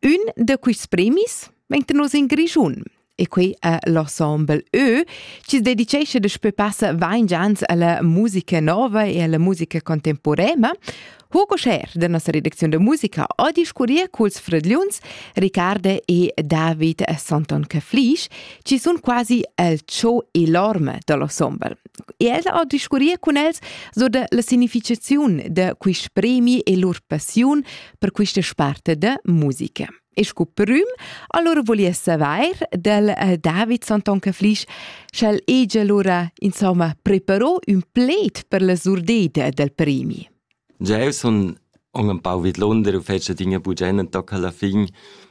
Ün da quists premis vegn tenuts in Grischun e quei è l'ensemble Ö, chi dedicesce daspö passa ventg ans alla musica nova e alla musica contemporanea, Hugo Scher da nossa redacziun da musica ho discurrir culs fradgliuns Riccardo e David Santon Caflisch, chi sun quasi el ciò enorme da l'ensemble. E el ho discurrir cun els so da la significaziun da quist premi e lur passiun per questa sparte de musica. E sco prüm, allora volia saver del eh, David Santon Caflisch, sch'el ege allora, insomma, preparò un pled per la surdeta del premi. Già son ho un pau vid Londra u fece dinge bugena tocca alla fin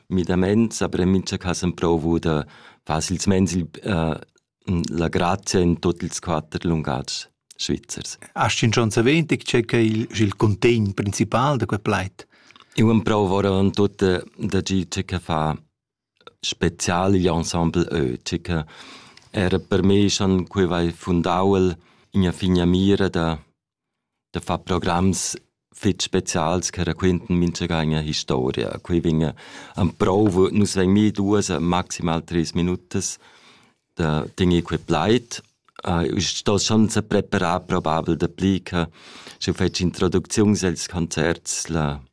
midament, aber in mincha cas provo da facils mens il uh, La grazia in tuot ils quatter lungatgs svizzers. Hast du schon erwähnt, c'è che il, il contegn principal da quel plaid? Io am provo oravant tutte da gi c'è che fa spezial gli ensemble ö, c'è che era per me schon quei vai fundauel in a figna mira da da far programs fitg specials che raquintan mintgaga historia. Quei vegn emprouvo, nus vegn mi duas e maximal treis minutas da tener quei plaid. Uh, sto schon se preparar probabel dapli che sche fetsch introducziuns els concerts la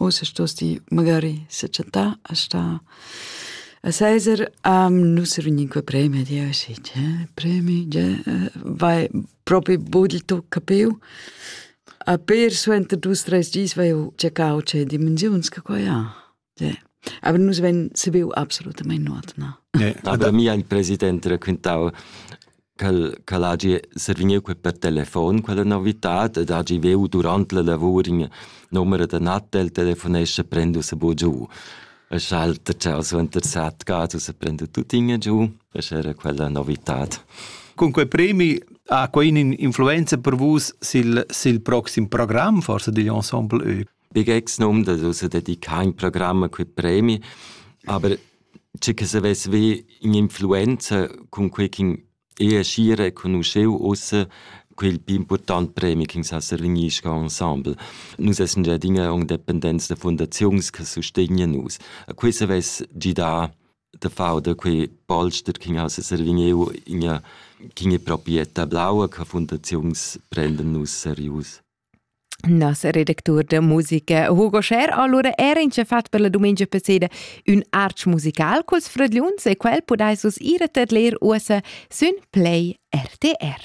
Ussa stos ti magari sechattar a star a Cäsar. Nus vegnin cua premi ad ir si, tge premi, tge vai propi budel tu capiu. A per suenter dus, treis gis vai eu cercau tge dimensiuns che quai ha. Aber nus ven sabiu absolutament nuot, na. Ja, aber mir ein Präsident raquintau ch'el ch'el hagi survegniu quei per telefon quella novitad ed hagi veu durant la lavur in numer da Natta el telefonescha prend ussa bu giu. E schalter ciao suenter sat gat ussa prend tuttina giu e era quella novitad. Con quei premi ha quei influenza per vus sil sil proxim program forsa digl ensemble Ö? Pickaxe nummdas, ussa dedicà in programm a quei premi, aber tge che savess haver in'influenza cun quei ch'in era schi reconuscheu ussa quel pli important premi ch'ins ha survegnisce ensemble. Nus essan gia adina en dependents da fundaziuns che sustegnan nus. A quei savess gidar da far da quei polster ch'in ha survegniu ina ch'in è proprietà blaua che fundaziuns prendan nus serius. Nos redactur da musica Hugo Scher allura era in fatg per la dumengia passeda ün arch musical culs fradgliuns e quel podais vus ir a tadler uossa sün Play RTR.